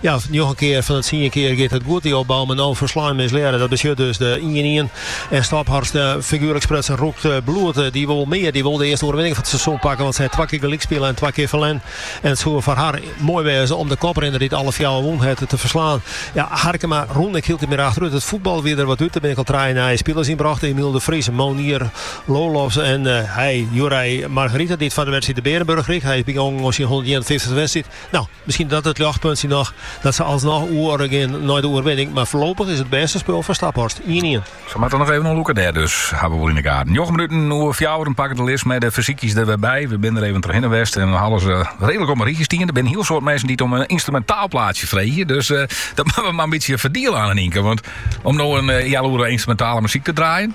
Ja, njoggen kear fan de tsien kear giet it goed, dy opbou, mar no ferslein, mislearre. Dat betsjut dus de ien-ien. En Staphorst, figuerlik sprutsen, rûkt bloed. Dy wol wol mear, dy wol de earste oerwinning fan it seizoen pakke, want sy hat twa kear gelyk spile en twa kear ferlern. En it soe foar har moai wêze om de koprinner, dy't alle fjouwer wûn hat, te ferslaan. Ja, Harkema rûn ek hieltyd mear achterút. It fuotbal wie der wat út. Der binne ek al trije nije spilers yn brocht, Emiel de Vries, Monier Lolofs en Joeri Margarita, dy't foar de wedstriid de Beerenburg krige. Hy is bygongen oan syn hûndertienenfiftichste wedstriid. No, Miskien dat it ljochtpuntsje noch dat se alsnoch oer gean nei de oerwinning, mar foarlopich is it bêste spul fan Staphorst ien-ien. Se moatte noch even oan lûke dêr dus, hawwe we wol yn de gaten. Njoggen minuten oer fjouweren pakke we de list mei de fersykjes der wer by. We binne der even trochhinne west en we hawwe se redlik op in rychje stean. Der binne in hiel soad minsken dy't om in ynstrumentaal plaatsje freegje, dus dat moatte we mar in bytsje ferdiele sa no en dan, tink, want om no in healoere ynstrumentale muzyk te draaien.